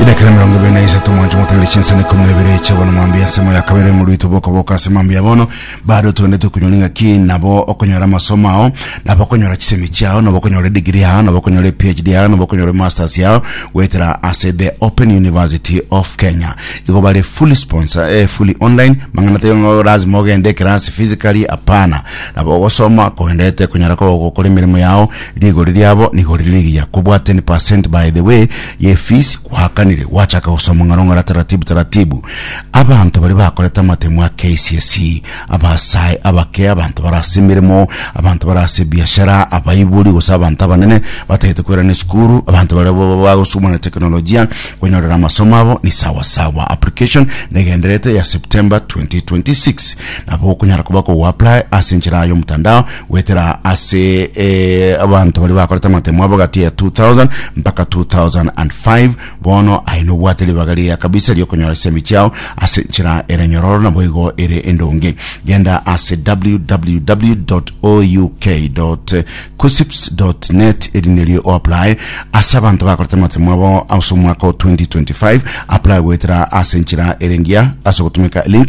Edakika ya emerongo ebere na isato mwanche motagere chinsani ikomi na ibere chia bono mwambia ensemo ya kabere ng'uru itwe bokoboka ase mambia ya bono bado twendete kunyora ng'a ki nabo okonyora amasomo ao nabo okonyora chisemi chiao nabo okonyora edigiri yao nabo okonyora ephd yao nabo okonyora emasters yao goetera ase the open university of kenya igo bare fully sponsor eh, fully online mang'ana taiyo ng'o lazima ogende ekerasi physically apana nabo ogosoma koendete konyara ko- gokora emeremo yao Rigori riabo nigo rire rigiya kobwate ni percent by the way ye fees gwakanire gwachaka gosoma ng'aro ng'ara taratibu taratibu abanto baria bakorete amatemo a kcse abasae abake abanto bare ase emeremo abanto bare ase ebiashara abaibori gose abanto abanene batagete koirana esukuru abanto baria ba- ba- bagosugumana na teknolojia konyorera amasomo abo ni sawa sawa application negendererete ya September 2026 nabo okonyara koba kogo apply ase enchera y'omotandao goetera ase eh, abanto baria bakorete amatemo abo gati ya 2000 mpaka 2005 bono aye nobwate ribaga riya kabisa riokonyora chisemi chiao ase nchera ere nyororo nabo igo ere endonge genda ase www.ouk.kusips.net eri nerio oapply ase abanto bakorete amatemo abo ase omwaka o 2025 apply goetera ase nchera ere engiya ase ogotumeka link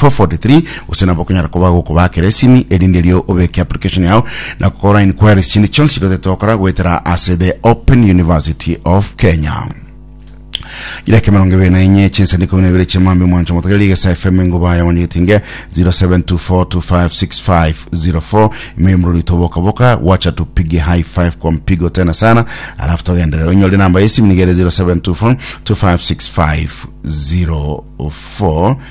443 gose nabo okonyara koba gokoba ake resimi erinde erio obeke application yao na gokora inquiries chinde chionsi totete gokora goetera ase the open university of kenya ireke mirongo ibere na enye chinsani ikumi na ibere chia mambi mwancho motogere rigesa fm enguba ya wanyegetinge 0724256504 ime mruri toboka boka wacha tupige high five kwa mpigo tena sana alafu togenderera onyore namba yesimu nigere 0724256504